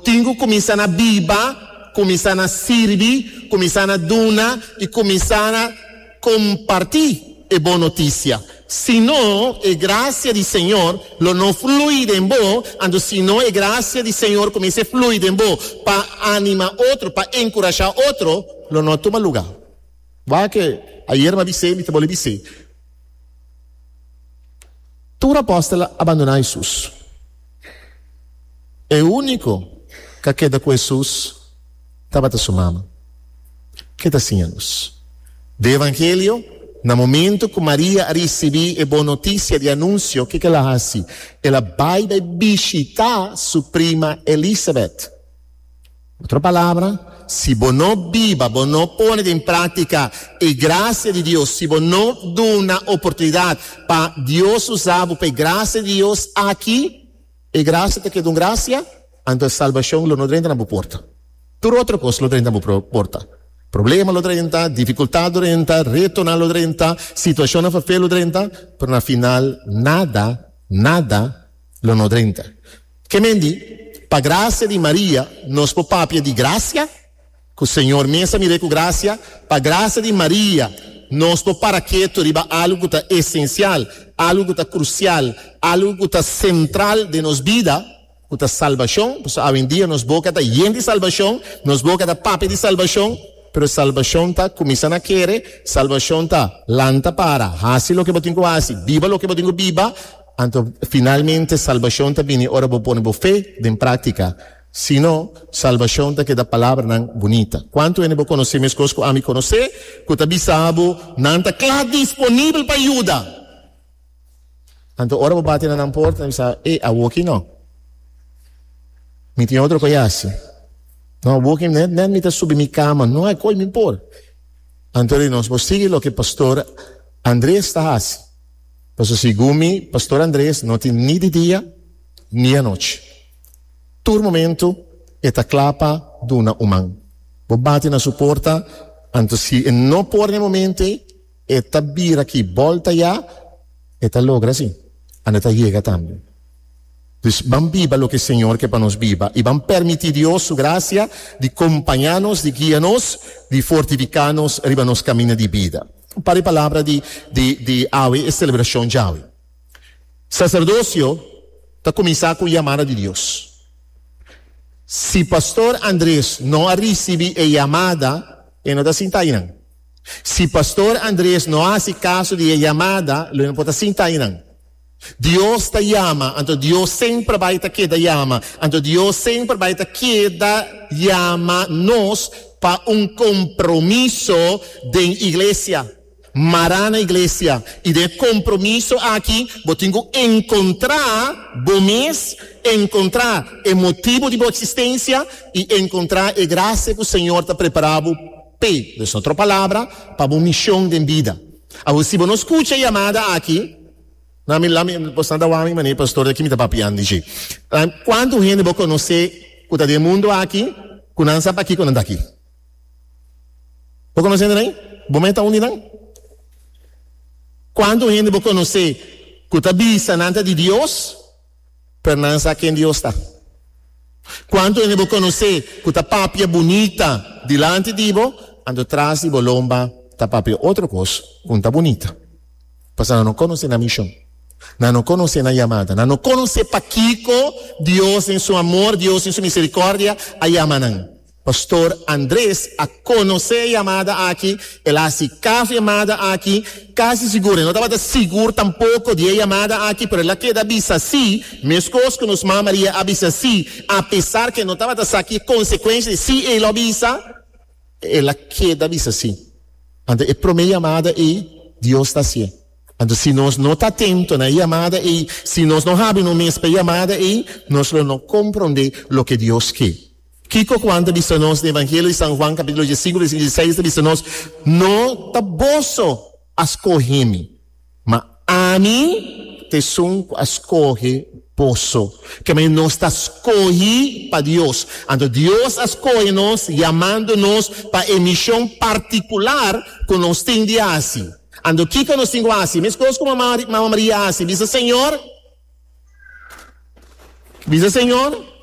Tin ku kuminsá na biba, kuminsá na sirbi, kuminsá na duna i kuminsá na kompartí e bon notisia. Si no, e grasia di Señor lo no flui den bo, anto si no e grasia di Señor kumins'é flui den bo pa anima otro, pa enkurashá otro, lo no a tuma lugá. Waak'é, ayer mi a bis'é, mi ta bole bis'é, tur apòstelnan a bandoná Hesus. E úniko ku a keda ku Hesus tabata su mama. Ke ta siña nos? Den Evangelio, na momentu ku Maria a risibí e bon notisia di anunsio, kiko el a hasi? El a bai bai bishitá su prima Elisabet. Otro palabra, si bo no biba, bo no pone den práktika e grasia di Dios, si bo no duna oportunidat pa Dios usa bo pa e grasia di Dios aki, e grasia ta keda un grasia, anto salbashon lo no drenta na bo porta. Tur otro kos lo drenta na bo porta. Problema lo drenta, difikultat lo drenta, retonan lo drenta, situashonnan fafé lo drenta, pero na final nada, nada, Lo no drenta. Ke men di, Pa gracia di Maria nos por papia di gracia? Ku Señor mes a mir'é ku gracia? Pa gracia di Maria nos por para ketu riba algu ku ta esencial, algu ku ta crucial, algu ku ta central den nos bida, ku ta salbacion? Por eso awendia nos boca ta yen di salbacion, nos boca ta papia di salbacion, pero salbacion ta cuminsa na kere, salbacion ta lanta para, haci loke bo tin ku haci, biba loke bo tin ku biba. Anto finalmente salbashon ta bini ora bo pone bo fe den práktika, si no, salbashon ta keda palabranan bunita. Kuantu hende bo konosé meskos ku ami konosé ku ta bisa bo nan ta kla disponibel pa yuda? Anto ora bo bati na nan porta, nan bisa, E awoki no. Mi tin otro ku a yasi. No, awoki net net mi ta subi mi kama. No hay koe mi por. Anto nos por sigui loke Pastor Andrés ta hasi. Paso segun mi, Pastor Andres no tin ni di dia ni anochi. Tur momento e ta kla pa duna un man. Bo bati na su porta, anto si e no por na e momento ei, e ta bira aki bolta ya, e ta logra esei, anda ta yega tambe. Dus ban biba loke Señor ke pa nos biba, i ban permiti Dios su gracia di kompaña nos, di guia nos, di fortifiká nos riba nos kaminda di bida. Pa di palabra di di awe e celebracion djawe. Sacerdocio ta cuminsa cu yamada di Dios. Si Pastor Andres no a ricibi e yamada e no ta sinta ayinan. Si Pastor Andres no a haci caso di e yamada lo e no por ta sinta ayinan. Dios ta yama, anto Dios semper bai ta keda yama, anto Dios semper bai ta keda yama nos pa un compromiso den Iglesia, mara na Iglesia. Y den e compromiso aki bo tin cu encontra bo mes, encontra e motibo di bo existencia y encontra e gracia cu Señor ta prepara bo pe, den otro palabra, pa bo mision den bida. Awor si bo no scucha e yamada aki, na mi la mi bo sta dawar mi mane pastor aki mi ta papian di dje. Cuanto hende bo conoce cu ta den mundo aki cu nan sa pakico nan ta aki? Bo conoce hende rey? Bo me ta un di nan? Cuanto hende bo conoce cu ta bisa nan ta di Dios? pero nan a sa ken Dios ta. Cuanto hende bo conoce cu ta papia bunita dilanti di bo, anto tras di bo lomba ta papia otro cos cu n'ta bunita? Pasobra nan no conoce nan mision, nan no conoce nan yamada, nan no conoce pakico Dios den su amor, Dios den su misericordia a yama nan. Pastor Andres a conoce e yamada aki, el a haci caso e yamada aki, casi sigur, e no tabata sigur tampoco di e yamada aki, pero el a keda bisa si, mescos cu nos ma Maria a bisa si, apesar cu e no tabata sa ki e consecuencia di si e lo bisa, el a keda bisa si. Anto e prome yamada ei, Dios ta haci'e. Anto si nos no ta atento na e yamada ei, si nos no habri nos mes pa e yamada ei, nos lo no compronde loke Dios ke. Kiko ku Juan ta bisa nos? Den Evangelio di San Juan kapitulo diesinko bersíkulo dieseis ta bisa nos, No ta boso a skohe mi, ma ami ta esun ku a skohe boso. Ke manera nos ta skohi pa Dios. Anto Dios a skohe nos yamando nos pa e mishon partikular ku nos tin di hasi. Anto kiko nos tin ku hasi? Meskos ku Mama Maria a hasi, bisa Señor, bisa Señor.